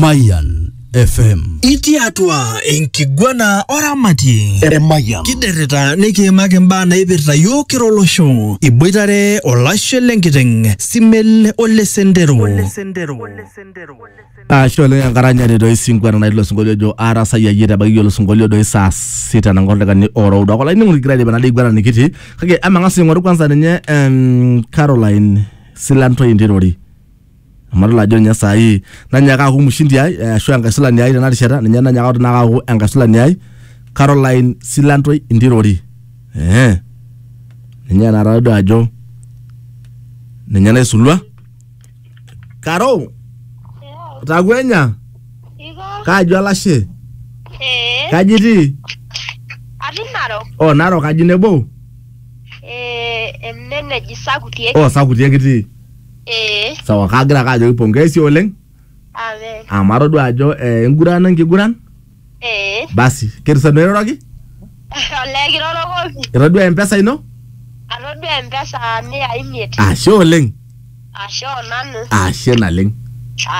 Mayan FM. Itii atua enkiguana oramatie. Eremayian. Kiderita nikiimaki mbaa naipirta yiok kira olosho. Iboitare olashe lenkiteng, Simel ole Sendero. Ashe oleng enkaranyare doi sinkweta natii ilo sinkolio ojo aarasai ayie ebaiki iyie olosinkolio doi saa sita nang'or lekani oroudo ake olainining'oni kigira aidipa nadii iguana nikitii kake emang'as aing'oru kwanza ninye em, Caroline Silantoi Ntirori amu adol ajo ninye saai nanyaaka aaku mshindi ai eh, ashu enkaisulani ai tena rishata ninye nanyaaka atu naaka aaku enkaisulani ai Caroline Silantoi Ntirori eh ninye naata todua ajo ninye naisulua Karo takwenya Iko? kaji olashe Ee. kaji itii Atii Narok. o Narok kaji nebo Ee, ene neji Sakutie. o sakuti ekitii Ee. sawa kagira ake ajoki pongezi oleng Amen. amu atodua ajo eh, enguran enkiguran Ee. basi ketusanu airoroki Olee kirorokoki. itodua empesa ino Atodua empesa mia imiet. ashe oleng Ashe onanu. ashe naleng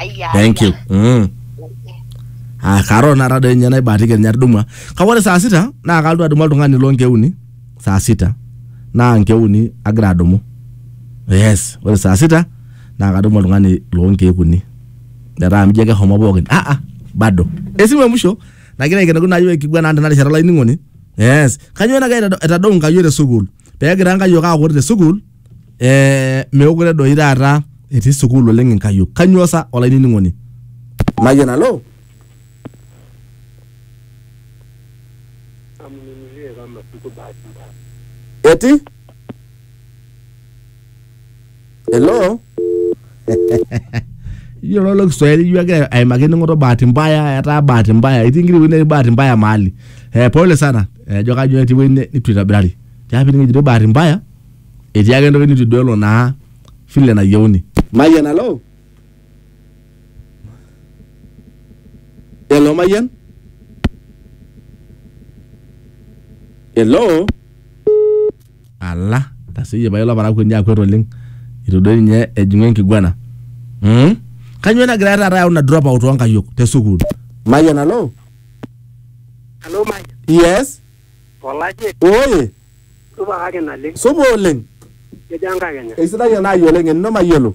Aya. thank you mm. Ah, karo nara doi ninye naibaatiki ninye atudumua kake ore saa sita naa kalotu adumu oltung'ani loonkeuni saa sita naa nkeek uni agira adumu yes ore saa sita naa kadumu oltung'ani loo nkeek uni metaa mijo keshomo pookin ah ah bado esimu e musho nagira aikenoki naa yiok enkiguana ang tena rishata olainining'oni yes kanyoo nagira aitado- aitadou nkai yiok te sukuul pegira nkai yiok aaku ore te sukuul eh, meekure doi taata etii sukuul oleng inkayiok kanyoo sa olainining'oni najo nalo amununulie kama siku bahati mbaya. eti hello iyiolo ilo kiswahili ijo egira aimaki ening'oto bahati mbaya etaa bahati mbaya itii nkiri ewueji netii bahati mbaya mahali eh, pole sana ejo kajo etii ewueji ne- nitu itobirari tiapi ning'ejitoi bahati mbaya etii ake entoki nitu iduelo naa vile nayieuni mayian alo Hello, Mayan. Hello. Ala, taseyie pae olaparakuo ninye akwet oleng. Itu doi ninye ejing'u enkiguana. Hmm? Kanyoo nagira taata ayau ina drop out oonkayiok te sukuul? Mayan, hello. Hello, Maya. Yes. Olaje, Oye, supa kake naleng. supa oleng. Kejo enkakenya. Eisidai ena ayiolo eng'eno mayiolo.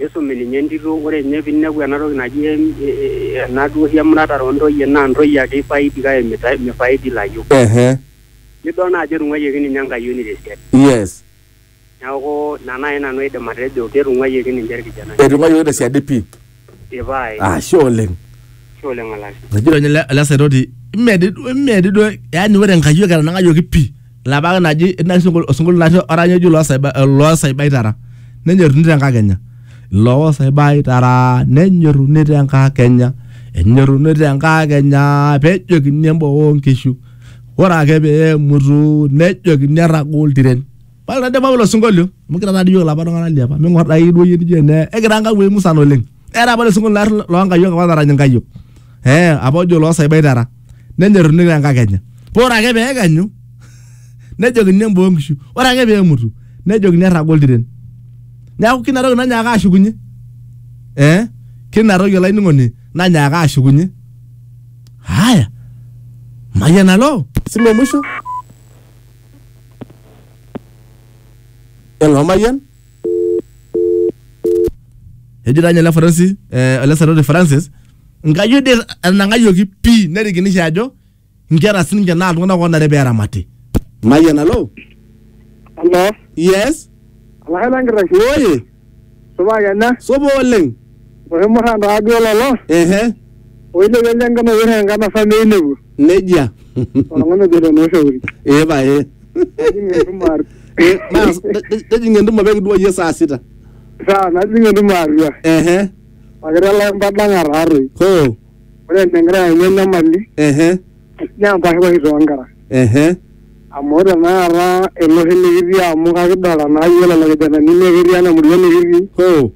Nisumi ninye entito ore ninye pinepu ena toki naji ena duo oshi emuratare oo ntoyie naa ntoyie ake ifaidi kake mifaidi ilayiok. Nidol naa ajo etung'uayioki ninye enkayioni te siadi. Neeku ina naai nanu aidim atejo ketung'uayioki ninche irkijanani. Etung'uayioki te siadi pii. Ee pae. Ashe oleng. Ashe oleng olashe. Etejo ninye ele saitoti mee dii duo yaani ore inkayiok etanang'ayioki pii. Labaki naji osinkolio natii orany oji loo saibaitara nenyoruni te nkakenya. Loo saibaitara nenyoruni te nkakenya enyoruni te nkakenya pejokini emboo oo nkishu. Ore ake pee emutu nejokini erraga oltiren. Paa ore ade pawul osinkolio amu kira taa dii iyiok ilapa tung'ana liapa ming'or dai duo iyie nijo ene ekira nkamuoi musan oleng'. era apa losinkolio lar loonkayiok apa narany inkayiok eh apa ojo loosaibai tara nenyoruni tenkakenya paa ore ake peekenyu nejokini emboo nkishu ore ake peemutu nejokini erraga oltiren neeku kina toki nanyaaka ashukunye eh kina toki olainining'oni nanyaaka ashukunye haya mayian alo silo mwisho elo mayian ejo taa ninye ele Francis eh, ele saroti Francis nkayiok dei etanang'ayioki pii nerikinisho ajo nkera sininche naa iltung'anak oonare pee eramati. Mayian alo. Hello. Yes. Olashe lenkitashe. Oye. Supa kenya. Supa oleng. Oshumurra taa duo lolo, ehe oilepie ele enkano oyieu enkano sa meinepu. nejia Oltung'ani ojo ilo noo shauri. ee pae Nejing entumo atua. Eh, mas- ne- nejing entumo pee kidua iyie saa sita Saa najing entumo atua. ehe Pakira lai mpadang'a taatoi. hoo Ore enegira ayaunyie enyamali ehe naa empashipashi too nkera. ehe Amu ore tenakata ele oshi likitii amu kakidolta naa iyiook lelo kijanani naa ketii ena murua nikitii. hoo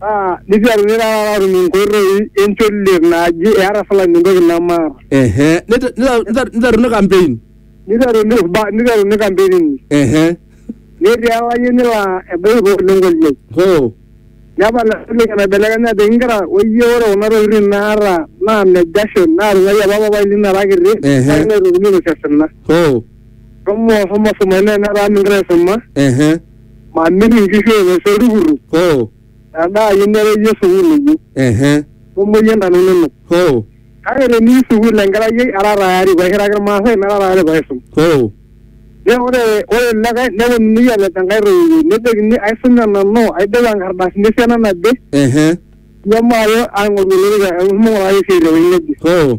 Naa niteru nirara atum inkoitoi encholiet naaji eeta fulani entoki nemaata. ehe Nite- nita- nita- niteruni campaign Niteru nirba- niteru nikampenini. ehe Netii olayioni laa ebaiki paa oleng olyiai. hoo Nepal entoki naibelekenya ajoki inkera oyie ore kuna tokitin naata naa ne jasho naatung'uayie apa papai lino era kiti Ehe. kake meitokini ainosie osina. hoo Shomo shomo suma ine netaa mingira aisuma. ehe mamiri nkishu enye sii oltukutuk hoo metaa ayieu nereyie sukuul inyi ehe nemuoyie intana inonok hoo kake teniyu sukuul enkerai ai ara tayari paishiraki irmaasai nara tayari paisum hoo ne ore ore likae neponunui alej enkae toiwuoi nejokini aisume nanu aidipa inkardasini esiana naje ehe nemaalo aing'oru olorika amu ing'urari esiai tewuei neje hoo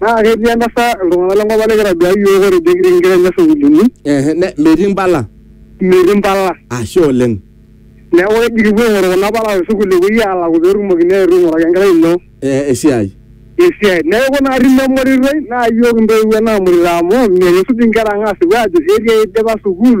naa ketii entasat iltung'anak lenkop ang nikitaduaa iyiook ore ejo kitii inkera enye sukuulini Ehe, ne- metii impala metii impala ashe oleng neeku keji kipuo aing'oru kuna pala te sukuul epuoi aalaku peetumokini aetu aing'uraki enkerai ino Eh, esiai esiai neeku naa tine emoritoi naa iyiook intoiwuo naamurita amu mekisuj inkera ang aasipu aajo etii eidipa sukuul